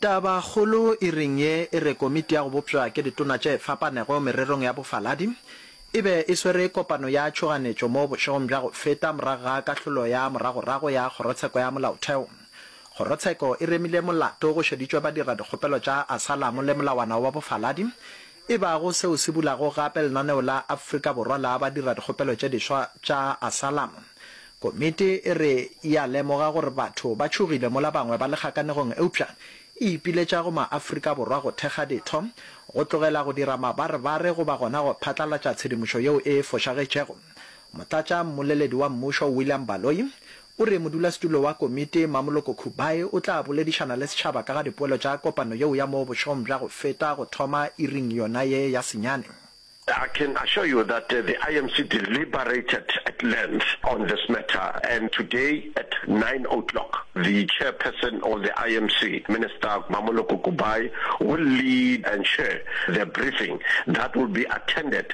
Tabakgolo iring ye e re Komiti ya go Bopša ke Ditona tše Fapanego Mererong ya Bofaladi e be e swere kopano ya tšhoganetšo mo bošegong bja go feta morago ga kahlolo ya moragorago ya Kgorotsheko ya Molaotheo. Kgorotsheko e remile molato go šeditšwe badiradikgopelo tša asalamo le molawana wa bofaladi e bago seo se bulago gape lenaneo la Afrika Borwa la badiradikgopelo tše diswa tša asylum. Komiti e re e a lemoga gore batho ba tšhogile mola bangwe ba le kgakanegong eupša e ipiletša go maAfrika Borwa go thekga ditho, go tlogela go dira mabarebare goba gona go phatlalatša tshedimošo yeo e fošagetšego. Motlatšammoleledi wa mmušo William Baloyi o re modulasetulo wa komiti Mamoloko Khubayi o tla boledišana le setšhaba ka ga dipoelo tša kopano yeo ya mo bošong bja go feta go thoma iring yona ye ya senyane. I can assure you that the IMC deliberated at length on this matter and today at nine o'clock the Chairperson of the IMC, Minister Mamoloko Khubayi will lead and chair the briefing that will be attended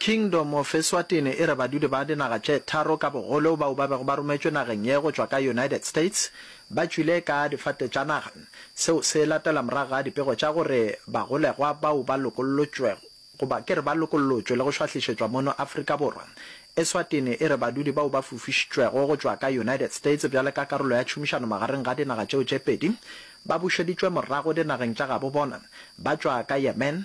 Kingdom of Eswatini e re badudi ba dinaga tše tharo ka bogolo bao ba bego ba rometšwe nageng ye go tšwa ka United States ba tšwile ka difate tša naga. Seo se latela morago ga dipego tša gore bagolegwa bao ba lokollotšwego goba ke re ba lokollotšwe le go šwahlišetšwa mono Afrika Borwa. Eswatini e re badudi bao ba fofišitšwego go tšwa ka United States bjale ka karolo ya tšhomišano magareng ga dinaga tšeo tše pedi ba bušeditšwe morago dinageng tša gabo bona ba tšwa ka Yemen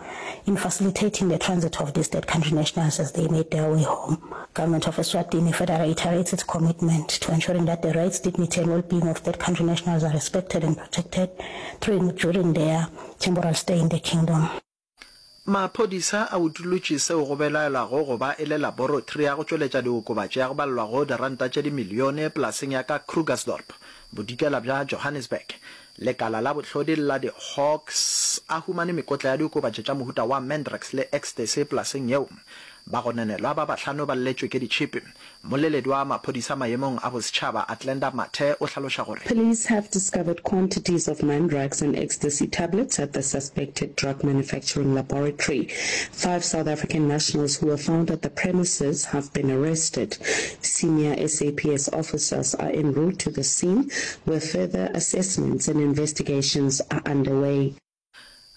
In facilitating the transit of these third country nationals as they made their way home, Government of Eswatini further reiterates its commitment to ensuring that the rights, dignity and well-being of third country nationals are respected and protected through and during their temporal stay in the Kingdom. Maphodisa a utolotše seo go belaelwago go ba e le laboratory ya go tšweletša diokobatši ya go balelwa go diranta tše dimilione polaseng ya ka Krugersdorp, bodikela bja Johannesburg, Lekala la bohlodi la di-Hawks a humane mekotla ya diokobatši tša mohuta wa mandrax le ecstasy polaseng yeo. Bagononelwa ba bahlano ba lletšwe ke ditšhipi. Mmoleledi wa maphodisa maemong a bosetšhaba Athlenda Mathe o hlaloša gore. Police have discovered quantities of mandrax and ecstasy tablets at the suspected drug manufacturing laboratory. Five South African nationals who were found at the premises have been arrested. Senior SAPS officers are en route to the scene where further assessments and investigations are underway.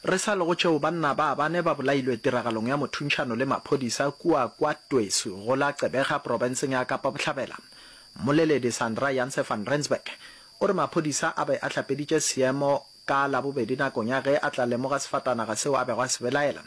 Re sa le go tšeo, banna ba bane ba bolailwe tiragalong ya mothuntšhano le maphodisa kua kwa Tweesu go la Gqeberha profenseng ya Kapa Bohlabela. Mmoleledi Sandra Janse van Rensburg o re maphodisa a be a hlapeditše seemo Ka Labobedi nakong ya ge a tla lemoga sefatanaga seo a bego a se belaela,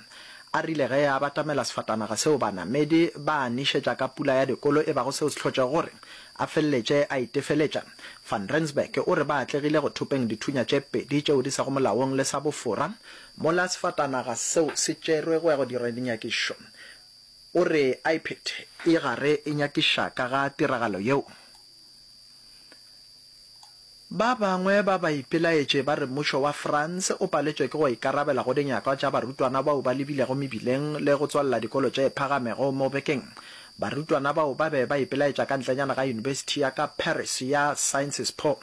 a rile ge a batamela sefatanaga seo banamedi ba a nišetša ka pula ya dikolo e bago seo se hlotšego gore a feleletše a itefeletša. Van Rensburg o re ba atlegile go thopeng dithunya tše pedi tšeo di sego molaong le sa bofora. Mola sefatanaga seo se tšerwe go ya go dira dinyakišo, o re a iphethe. E gare e nyakiša ka ga tiragalo yeo, Ba bangwe ba baipelaetše ba re mmušo wa France o paletšwe ke go ikarabela go dinyakwa tša barutwana bao ba lebilego mebileng le go tswalela dikolo tše phagamego mo bekeng. Barutwana bao ba be ba ipelaetša ka ntlenyana ga yunibesithi ya ka Paris ya Sciences Po.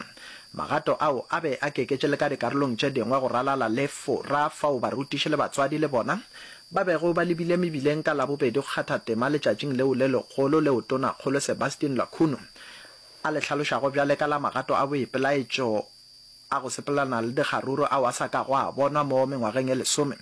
Magato ao a be a keketše le ka dikarolong tše dingwe go ralala le Fora fao barutiši le batswadi le bona ba bego ba lebile mebileng ka Labobedi go kgatha tema letšatšing leo le legolo leo Tonakgolo Sebastien Lacuno a le hlalošago bjale ka la magato a boipelaetšo a go sepelelana le dikgaruru ao a sa kago a bonwa mo mengwageng e lesome.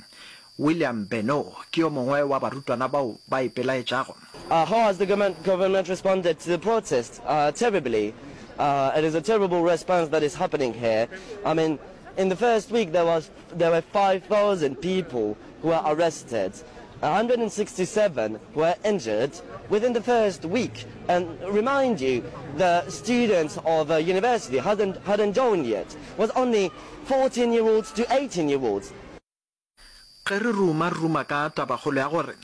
William Benow ke yo mongwe wa barutwana bao ba ipelaetšago. How has the government responded to the protest? Terribly. It is a terrible response that is happening here. I mean, in the first week there was there were five thousand people were arrested, a hundred and sixty seven were injured within the first week and remind you the students of a university hadn't hadn't joined yet was only fourteen year olds to eighteen year olds. Ge re ruma ruma ka tabakgolo ya gore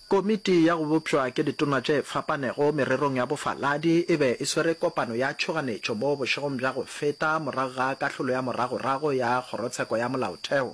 Komiti ya go Bopšwa ke Ditona tše Fapanego Mererong ya Bofaladi e be e swere kopano ya tšhoganetšo mo bošegong bja go feta morago ga kahlolo ya moragorago ya Kgorotsheko ya Molaotheo,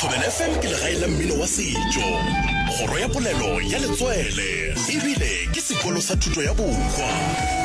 Thobela FM ke legae la mmino wa setšo, kgoro ya polelo ya letswele ebile ke sekolo sa thuto ya bokwa.